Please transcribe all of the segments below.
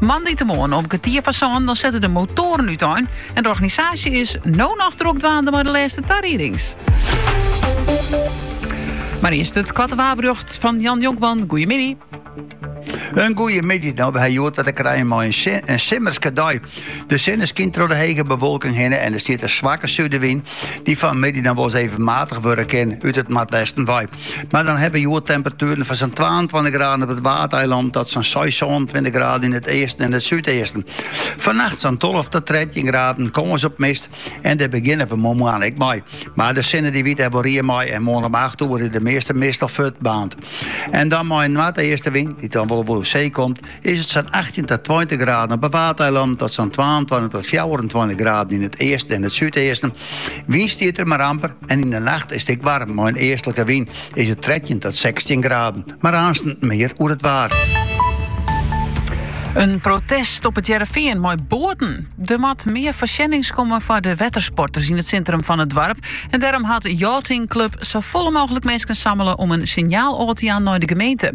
Moandeitemoarn om kertier foar sânen dan sette de motoaren útein en de organisaasje is no noch drok dwaande mei de lêste tariedings. Maar earst it koarte waarberjocht fan Jan Jonkman. Goeiemiddei. In goeie middei. No, we hawwe hjoed te krijen mei in, in simmerske dei. De sinne skynt troch de hege bewolking hinne en der stiet in swakke sudewyn dy't fanmiddei noch wolris even matich wurde kin út it noardwesten wei. Mar dan hawwe we hjoed temperatueren fan sa'n twaentweintich graden op it Waadeiland tot sa'n seis, sânentweintich graden yn it easten en it súdeasten. Fannacht sa'n tolve tot trettjin graden, kâns op mist en dêr begjinne we moarn ek mei. Mar de sinne dy wit der wol rie mei en moarn om acht oere is de measte mist al fuortbaarnd. En dan mei in noardeastenwyn, dy't dan wol oer see komt, is it sa'n achttjin tot tweintich graden op 'e Waadeilannen tot sa'n twaentweintich tot fjouwerentweintich graden yn it easten en it súdeasten. Wyn stiet der mar amper en yn de nacht is it ek waarm. Mei in eastlike wyn is it trettjin tot sechstjin graden. Mar aansten mear oer it waar. In protest op It Hearrenfean mei boaten. Der moat mear foarsjennings komme foar de wettersporters yn it sintrum fan it doarp. En dêrom hat Yachting Club safolle mooglik minsken sammele om in sinjaal ôf te jaan nei de gemeente.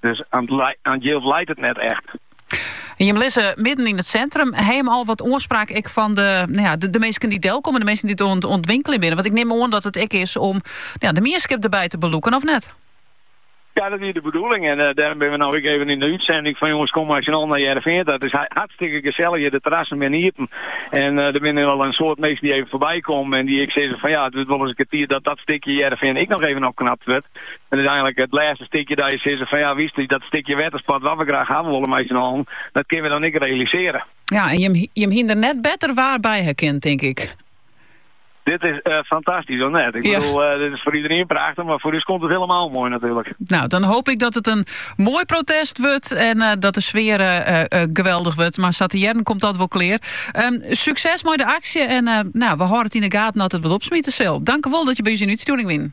Dus oan it jild leit it net echt. En jim lizze midden yn it sintrum. Ha jim al wat oanspraak ek fan de, no ja, de, de minsken dy't delkomme, de minsken dy't oan it winkeljen binne? Want ik nim oan dat it ek is om no ja, de mienskip derbij te belûken, of net? Ja, dat wie de bedoeling. En uh, eh, dêrom binne we no ek even yn de útsending fan jonges, kom mar snel nei It Hearrenfean ta. It is hartstikke gesellich. De terrassen binne iepen. En uh, der binne wol in soad minsken dy't even foarby komme. En dy't ek sizze fan ja, it wurdt wolris in kear tiid dat dat stikje Hearrenfean ek noch even opknapt wurdt. Dat is eigenlik it lêste stikje dat je sizze fan ja, wist u dat stikje wetterspad wat we graach hawwe wolle mei syn allen, dat kinne we dan ek realisere. Ja, en jim hie der net better waar by ha kind, tink ik. Dit is eh, fantastisch, of net? Ik bedoel, eh, dit is voor iedereen prachtig, maar voor ons komt het helemaal mooi natuurlijk. Nou, dan hoop ik dat het een mooi protest wordt en eh, dat de sfeer geweldig wordt. Maar Satierden komt dat wel clear. Ehm, succes met de actie en nou, we houden het in de gaten dat het wat opsmieten zal. Dank u wel dat je bij ons in uitsturing wint.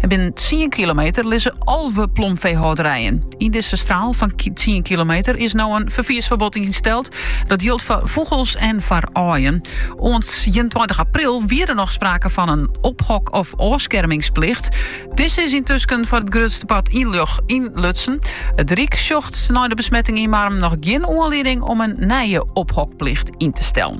En binnen 10 kilometer lizze alve plomveehâlderijen. Yn dizze straal fan 10 kilometer is no in ferfiersferbod ynsteld. Dat jildt foar fûgels en foar aaien. Oant 21 april wie der noch sprake fan in ophok- of ôfskermingsplicht. Dizze is yntusken foar it grutste part ynlutsen. It Ryk sjocht nei de besmetting yn Marrum noch gjin oanlieding om in nije ophokplicht yn te stellen.